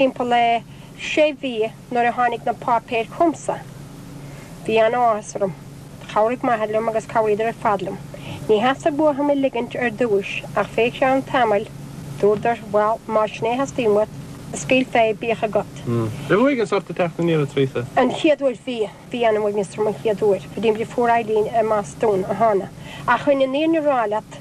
Timpeall le sé mhí nuair a tháinig na páipéir chugamsa. Bhí an-áthas orm. Chabhraigh m'athair liom agus chabhraíodar ar fad liom. Ní theastaigh uathu mé ligint ar dtúis ach fé cheann tamaill dúradar, bhal, más sin é a theastaíonn uait, scaoil fé, bíodh agat. Bhí uaigneas ort ag teacht aniar a Theresa? An chéad uair, bhí. Bhí an-uaigneas orm an chéad uair, go dtí mo dheirfiúr Eileen i mBostún a thána. Ach rinne Niamh a rá leat.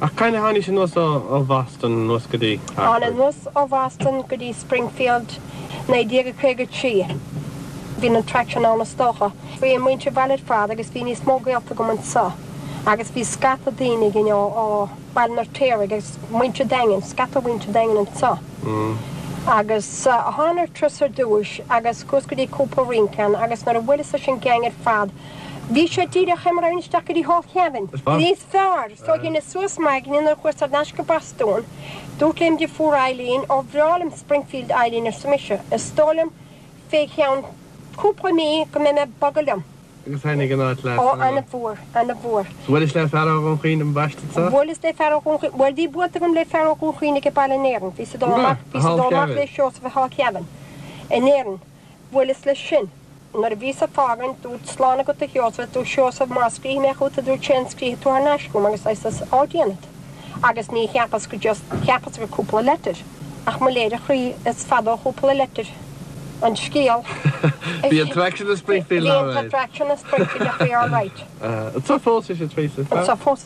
Ach cathain a tháinís anuas ó Bhoston anuas go dtí Hartford? Thána anuas ó Bhoston go dtí Springfield 1953. Bhí an attraction ann is dócha. Bhí muintir an bhaile ar fad agus bhí níos mó gaolta agam anseo agus bhí scata daoine againn ó ó Baile an Fheirtéaraigh agus muintir Daingin, scata mhuintir Daingin anseo. Agus thána ar turas ar dtús agus chuas go dtí cúpla rince ann agus nuair a bhuaileas leis an gang ar fad, Bhí sé díreach fé mar a raghainn isteach go dtí Hall Kevin. Níos fearr! So dheineas suas m'aigne nuair a chuas ar nais go Bostún. Dúrt lem dheirfiúr Eileen ó bhreá liom Springfield Eileen arsa mise. Is dóigh liom fé cheann cúpla mí go mbeidh mé ag bogadh liom. Agus thaitin an áit leat? Ó, an-mhór, an-mhór. So bhuailis le fear ó Dhún Chaoin an baistead seo? Bhuaileas le fear ó Dhún Chaoin, bhuel bhí buailte agam le fear ó Dhún Chaoin ag baile in Éirinn. Bhíos ag dul amach, bhíos ag dul amach le Seosamh i Hall Kevin in Éirinn. Bhuel, is leis sin. Nuair a bhíos ag fágaint, dúrt slán agat a Sheosaimh, dúirt Seosamh, má scríobhfaidh mé chugat a dúirt sé an scríobfaidh tú thar n-ais chugam agus I says ó déanfad. Agus ní cheapas go just cheapas gur cúpla leitir ach mo léir a chroí is fada ó chúpla leitir an scéal Bhí an attraction i Springfield, alright. Bhí an attraction i Springfield ach bhí alright. Anseo fós, is ea Theresa. Anseo fós.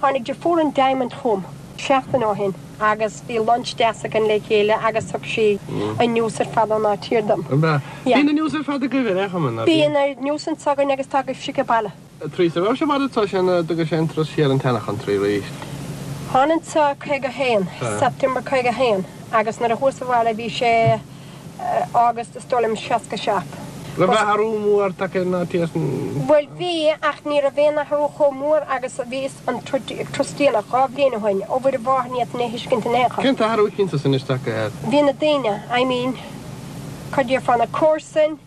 Tháinig deirfiúr an Diamond chugam seachtain ó shin agus bhí lunch deas againn le chéile agus thug sí an news ar fad ón áit thiar dom. An bhfeá? Yeah. Bíonn an news ar fad agaibh ar aon chuma, ná bíonn? Bíonn oiread news anseo againn agus tá agaibhse ag baile. Theresa, raibh sé mar atá sé nó d'fhag sé an turas siar ar an tseana chontraí arís? Thána anseo caoga haon, September caoga haon, agus nuair a chuas abhaile bhí sé. agus is dóigh liom 67. Raibh Bhí athrú mór tagtha ar an fhaitíos na. Bhuel bhí, ach ní raibh aon athrú chomh mór agus a bhí an turas déanach dhá bhliain ó shoin, ó Mhuire Mháthair ní fhéadfainn é a thuiscint in aon chor. Cén t-athrú a chíonn tusa anois tagtha ar. Bhí na daoine, I mean, cad déarfá, na comharsain,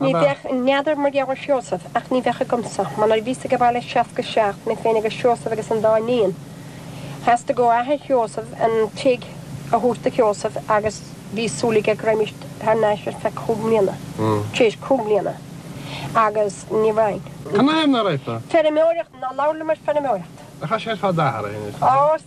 Ní bheadh, n'fheadar mar gheall ar Sheosamh, ach ní bheadh agamsa. Mar nuair a bhíos ag baile 67, mé féin agus Seosamh agus an dá iníon, theastaigh ó athair Sheosaimh an tigh a thabhairt do Sheosamh agus bhí súil aige go raghaimis thar n-ais ar feadh cúig mbliana, tar éis cúig mbliana, agus ní raghainn. Cad ina thaobh a rith do? Feirmeoireacht, ná labhair liom ar feirmeoireacht. Ach tá sé ar fad athraithe inniu, is dócha? Ó,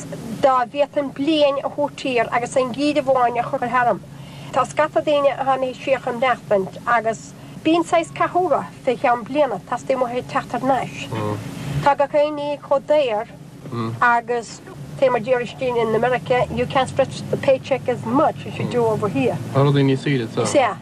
Dá mbeadh an bhliain tabhartha thiar agus an geimhreadh amháin a chur tharam. Tá scata daoine a tháinig anso amach anois agus bíonn saghas cath orthu fé cheann bliana, teastaíonn uathu teacht thar n-ais. Tá gach aon ní chomh daor agus tá mar a déarfá istigh in America, you can't stretch the paycheck as much as you do over here. Tá rudaí níos saoire anseo. Sea.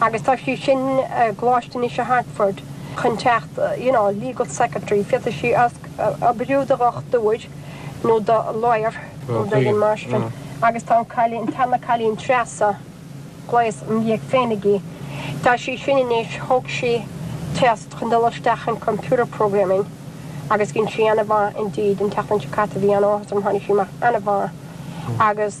agus tá sí sin i gcoláiste anois i Hartford chun teacht you know legal secretary féadfaidh sí oibriú do dhochtúir nó do lawyer nó don máistir agus tá an cailín tá an cailín Treasa agus an leaid féinig í tá sí sin anois thóg sí test chun dul isteach in computer programming agus dhein sí ana mhaith indeed an tseachtain seo caite bhí ana mhaith tháinig sí amach ana mhaith agus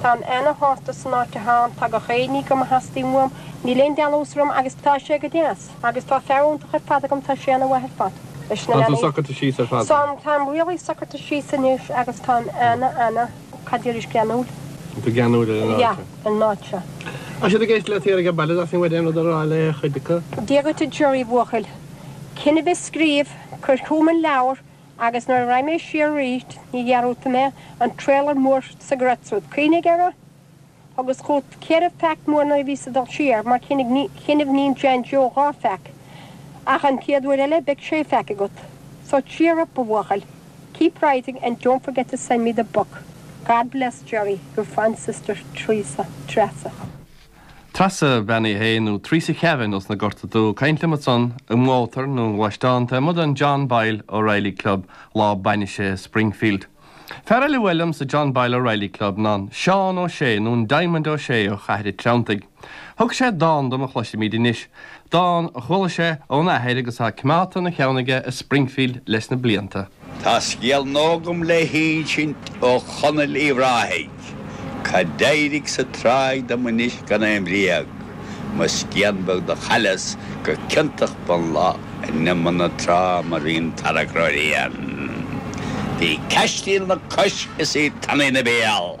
Táim ana shásta san áit atháim tá gach éinní go mba theastaíonn uaim, níl aon dealús orm agus tá sé go deas agus tá fear iontach ar fad agam tá sé ana mhaith ar fad leis na leanaí. Tá tú socraithe síos ar fad? Tá, táim really socraithe síos anois agus táim ana ana, cad déarfaidh, geanúil. Tá geanúil ar an áit? Yeah, ar an áit seo. Tá siad ag éisteacht leat thiar ag an baile, b'fhéidir go mbeadh aon rud a rá le chuid acu. Dia dhuit a Gerry bhuachaill. Coinnibh ag scríobh, cuir chugam an leabhar, Agus nuair a raghaidh mé siar aríst ní dhearúdfaidh mé an trailer mór sa Great Southern, cuimhnigh air? Agus chugat ceithre feaic mór nuair a bhíos ag dul siar, mar choinnibh iníon John Joe dhá feaic, ach an chéad uair eile beidh sé feaic agat. So cheer up, a bhuachaill. Keep writing and don't forget to send me the book. God bless, Jerry. Your fond sister, Teresa, Treasa. Treasa Bhean Uí Shé nó Theresa Chauvin ós na Gorta Dubha ag caint liom ansan i mBóthar na nGluaisteán taobh amuigh den John Boyle O'Reilly Club lá bainise i Springfield. Fear eile a bhuail liom sa John Boyle O'Reilly Club ná an Seán Ó Sé nó an Diamond Ó Sé ó Chathair an Treantaigh. Thug sé dán dom a chloisfimid anois, dán a chuala sé óna athair agus atá coimeádta ina cheann aige i Springfield leis na blianta. Tá scéal nua agam le hinsint ó Chonallaigh Uíbh Ráthaigh, cad d'éirigh sa tráigh dom anois gan aon bhréag, mo scian bheag do chailleas go ciontach mo lot in imeall na trá mar bhí an tarrac ró-thréan. Bhí cois stíl ina cois is í tanaí 'na béal.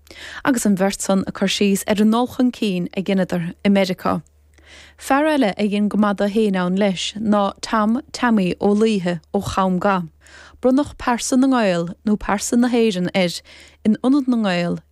Agus an bheirt san ag cur síos ar an ndul chun cinn a dheineadar i Meiriceá. Fear eile a dhein go maith dó fhéin ann leis ná Tom Tommy Ó Laoithe ó Chom Ga. Bronnadh Pearsa na nGael nó Pearsa na hÉireann air in Ionad na nGael i